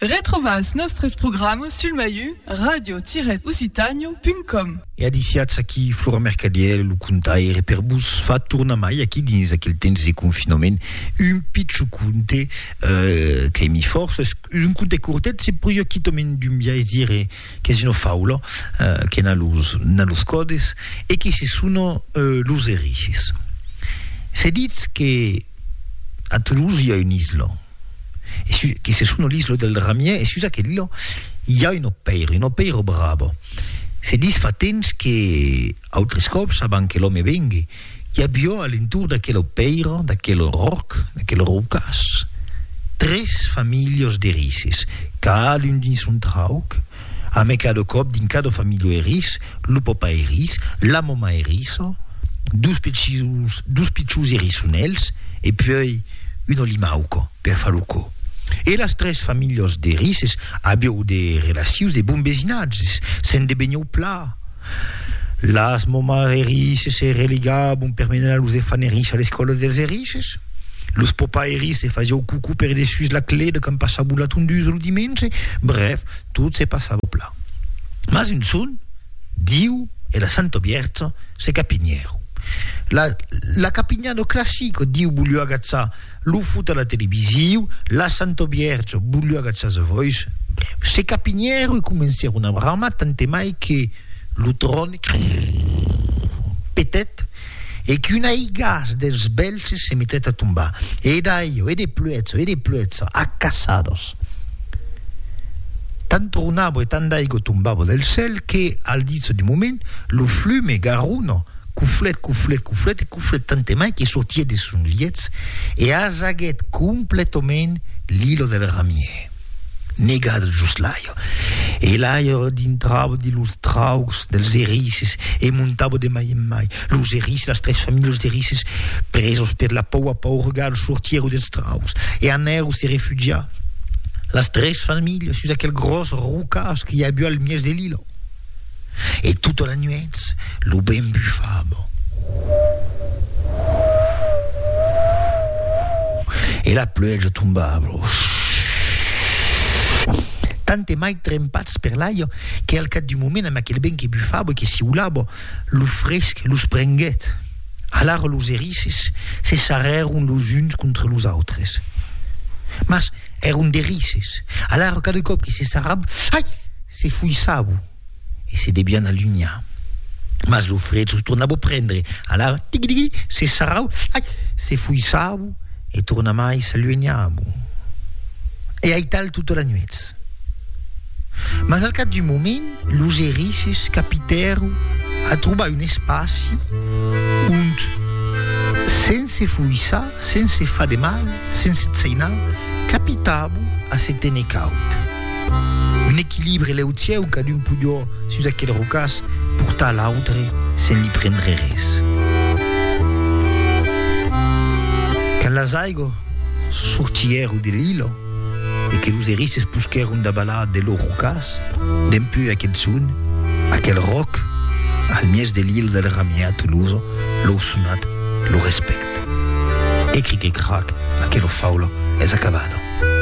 Retrobas nòstres programas sul maiu radio-occitània.com. E adisiatz aquí Flora Mercadièl, lo contaire per vos far tornar mai aquí dins aquel temps de confinament un pichon conte qu'aimi fòrça, es un conte cortet, se pòdi quitament d'un biais dire. qu'es una faula que n'a los n'a los còdes e qui se sona los Erices. Se ditz que a Toulouse i a una isla e su qui se sona l'isla del Ramier e sus aquella i a una pèira, una pèira brava. Se ditz fa temps que autris còps abans que l'òme vengue I avió a l'entorn d'aquelo pèira, d'aquel ròc, d'aquel rocàs, tres familhos d'erisses, cadun dins son trauc, amb e cada còp dins cada familho eriss, lo papa eriss, la mama erissa, dos pichus, dos pichus erissonèls e puèi un olimauca per far lo cò. E las tres familhos d'erisses avió de relacions de bon vesinatges, se'n devenhó pla, Las moments erisses se religabon per menar los efants erisses a l'escòla dels erisses. Los papais erisses fasiáu cucu per dessús la clé de quand passabon la tondusa lo dimenge. Brèf, tot se passava plan. Mas un son, Diu e la Santa Bièrcha se capinhèron. La la capinhada classica, Diu voliu agatzar Lo fut a la televisiu, la Santa Vièrge voliu agachar sa vòis, se capinhèru e comencèru una brama tantemai que lo tròn petèt e qu'un aigàs dels bèlhs se metèt a tombar. E d'aiò, e de pluèja, e de pluèja, a caçados. Tant tronava e tant d'aigua tombava del cèl que, al ditz du moment, lo flume Garona, Cuflet, cuflet, cuflet e cuflet tantemai que sortiet de son lietz e asaguet completament l'ilo del ramier. Negat jos l'aire. E l'aire dintrava de los traucs dels erisses e montava de mai en mai. Los erisses, las tres familhas d'erisses, presos per la paua paurgal, sortieron dels traucs e anèron se refugiar, las tres familhas, sus aquel gròs rocàs que i aviá al mièg de l'ilo. e tota la nuètz lo vent bufava. E la pluèja tombava. Tant e mai trempats per l'aiga que al cap d'un moment amb aquel vent que bufava e que siulava, lo fresc los prenguèt. Alara los erisses se sarrèron los uns contra los autres. Mas èron d'erisses, alara cada còp que se sarravan, ai! se foissavan e se devián alunhar. Mas lo fred los tornava prendre, alara tigui-digui, se sarravan, ai! se foissavan e tornamai s'alunhavan. E aital tota la nuèch. Mas al cap d'un moment, los erisses capitèron a trobar un espaci ont, sense foissar, sense far de mal, sense tsainar, capitàvon a se téner caud. Un equilibre leucièu, cadun podió, sus aquel rocàs, portar l'autre sen li prendre res. Quand las aigos sortièron de l'ilo, e que los erisses posquèron davalar de lor rocàs, dempús aquel son, aquel ròc, al mièg de l'Ile del Ramier a Toulouse, lor sonat lo respècte. E cric e crac, aquela faula es acabada.